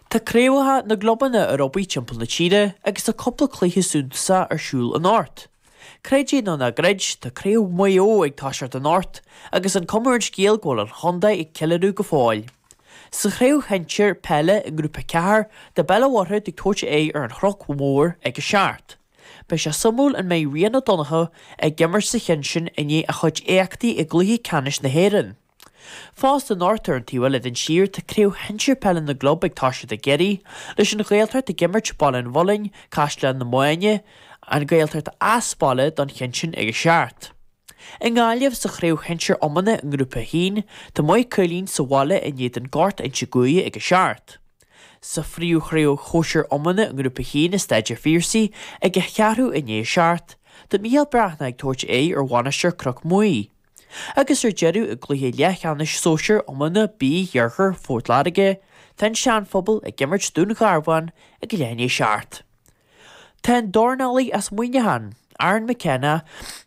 Tá craobhacha na gclubanna ar obair timpeall na tíre agus tá cúpla cluiche suntasach ar siúl anocht. Creid é nó ná creid, tá craobh Mhaigh Eo ag toiseacht anocht agus an cuma ar an scéal go bhfuil an chontae ag ceiliúradh go fóill. Sa chraobh shinsir peile i nGrúpa 4, tá Béal an Mhuirthead ag tabhairt aghaidh ar an Chnoc Mhór ag a seacht. Beidh sé suimiúil an mbeidh Ryan O'Donoghue ag imirt sa chionn sin i ndiaidh a chuid éachtaí i gcluiche ceannais na hÉireann. Fosta anocht ar an taobh eile den tír tá craobh shinsir peile na gclub ag toiseacht i gCiarraí, leis an Ghaeltacht ag imirt Baile an Mhuilinn, Caisleán na Mainge, An Ghaeltacht as baile don chionn sin ag a seacht. I nGaillimh, sa chraobh shinsir iomána i nGrúpa 1, tá Maigh Cuilinn sa bhaile in éadan Gort Inse Guaire ag a seacht. Sa phríomhchraobh shóisir iomána i nGrúpa 1 i Staid a' Phiarsaigh ag a cheathrú i ndiaidh a seacht, tá Mícheál Breathnach ag tabhairt aghaidh ar Mhainistir Chnoc Muaidh. agus ar deireadh i gcluiche leathcheannais sóisear iomána B Iarthar Phort Láirge, tá an Seanphobal ag imirt Dún Garbhán ag a leath i ndiaidh a seacht. Tá an dornálaí as Muineachán, Aaron McKenna,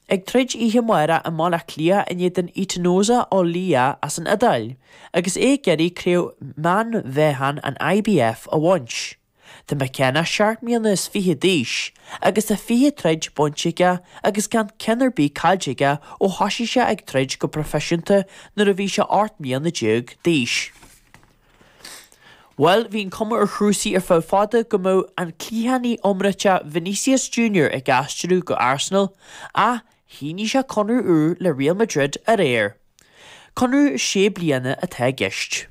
ag troid oíche amárach i mBaile Átha Cliath in éadan Etinosa Oliha as an Iodáil agus é ag iarraidh craobh meánmheáchain an IBF a bhaint. Tá McKenna seacht mbliana is fiche d'aois agus tá fiche troid bainte aige agus gan ceann ar bith caillte aige ó thoisigh sé ag troid go proifisiúnta nuair a bhí sé ocht mbliana déag d'aois. Bhuel, bhí an chuma ar chúrsaí ar feadh fada go mbeadh an cliathánaí iomráiteach Vinicius Junior ag aistriú go Arsenal ach Shínigh sé conradh úr le Real Madrid aréir. Conradh sé bliana atá i gceist.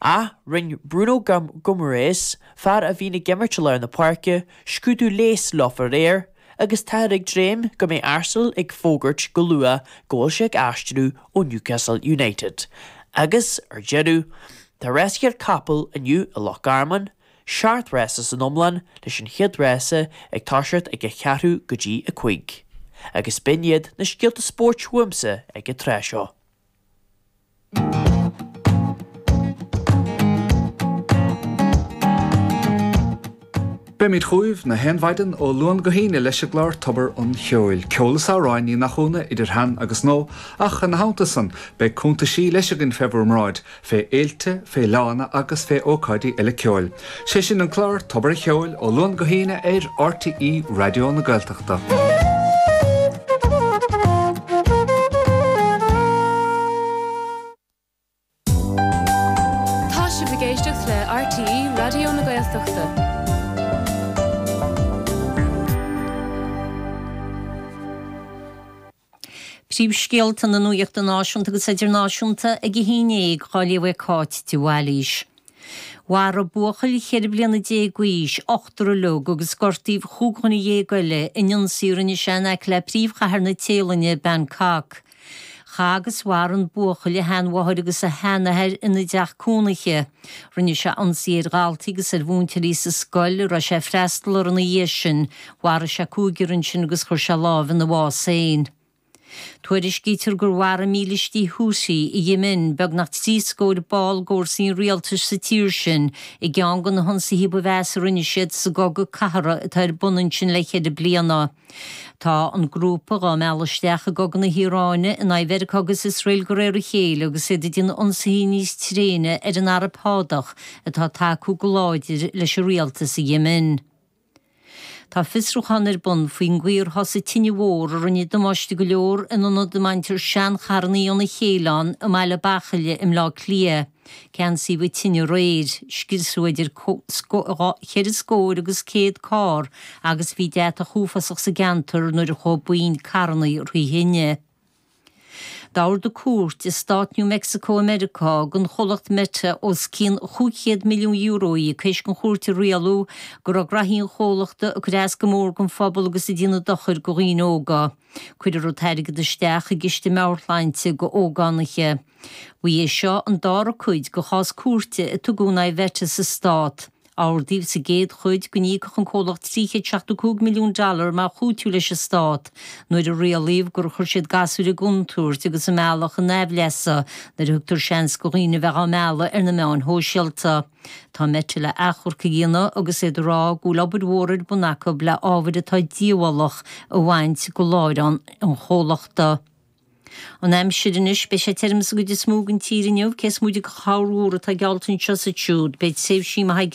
Ach rinne Bruno Guimarães, fear a bhíonn ag imirt i lár na páirce, scrúdú leighis leofa aréir agus táthar ag dréim go mbeidh Arsenal ag fógairt go luath go bhfuil sé ag aistriú ó Newcastle United. Agus, ar deireadh, tá rásaíocht capall inniu i Loch Garman. seacht rása san iomlán, leis an chéad rása ag toiseacht ag a cheathrú go dtí a cúig. Agus b'in iad na scéalta spóirt uaimse ag an tráth seo. Beimid chugaibh na haon mhaidin ó Luan go hAoine leis an gclár Tobar an Cheoil, ceol is amhráin, ní nach ionadh, idir shean agus nua, ach ina theannta san, beidh cúntaisí leis againn fé bhur mbráid, fé fhéilte, fé fhleánna agus fé ócáidí eile ceoil, sé sin an clár Tobar a' Cheoil ó Luan go hAoine ar RTÉ Raidió na Gaeltachta. Tá sibh ag éisteacht le RTÉ Raidió na Gaeltachta. Príomhscéalta na Nuachta Náisiúnta agus Idirnáisiúnta ag a haon dhéag, á léamh ag Cáit de Bhailís. Mharaigh buachaill cheithre bliana déag d'aois ochtar uilig agus gortaíodh chúig dhuine dhéag eile in ionsaí a rinne sé in aice le príomhchathair na Téalainne, Bangkok. Chaith agus mharaigh an buachaill a sheanmháthair agus a sheanathair ina dteach cónaithe. Rinne sé ionsaí ar dhaltaí agus ar mhúinteoirí sa scoil a raibh sé ag freastal uirthi ina dhiaidh sin. Mharaigh sé cúigear ansin agus chuir sé lámh ina bhás féin. Tuairiscítear gur mharaigh mílístí Houthi in Éimin beagnach trí scór ball d'fhórsaí an rialtais sa tír sin i gceann de na hionsaithe ba mheasa a rinne siad sa gcogadh cathartha atá ar bun ansin le ceithre bliana. Tá an grúpa dhá mealladh isteach i gCogadh na hIaráine in aghaidh Mheiriceá agus Iosrael de réir a chéile agus iad ag déanamh ionsaithe níos tréine ar an Araib Shádach atá ag tacú go láidir leis an rialtas in Éimin. Tá fiosrúchán ar bun faoin gcaoi ar thosaigh tine mhór a rinne damáiste go leor in ionad a mbaintear seancharrannaí óna chéile ann i mBaile Bachaille i mBleá Cliath. Ceansaíodh an tine aréir, scriosadh idir cheithre scóir agus céad carr agus bhí deatach uafásach sa gceantar nuair a chuaigh na carrannaí thrí thine. D'ordaigh cúirt i stát New Mexico i Meiriceá don chomhlacht Meta os cionn chúig chéad milliún euro a íoc toisc an chúirt a rialú go raibh graithí an chomhlachta ag cur as go mór gon phobal agus ag déanamh dochair go dhaoine óga. Cuirfear an t-airgead isteach i gciste meabhairshláinte d'ógánaithe. Ba é seo an dara cuid de chás cúirte a tugadh in aghaidh Mheta sa Stát. Ordaíodh sa gcéad chuid go n-íocfadh an comhlacht 375 milliún dollar mar chúiteamh leis an Stát nuair a rialaíodh gur chuir siad gasúir i gcontúirt agus a mbealach a n-aimhleasa nuair a thugtar seans do dhaoine a bheadh á mealladh ar na meáin shóisialta. Tá Meta le achomharc a dhéanamh agus iad ag rá go bhfuil obair mhór ar bun acu le ábhair atá díobhálach a bhaint go láithreán an chomhlachta. An aimsir anois, beidh sé tirim sa gcuid is mó den tír inniu, cé is móite de chorrmhúr atá geallta anseo is ansiúd. Beidh tréimhsí maithe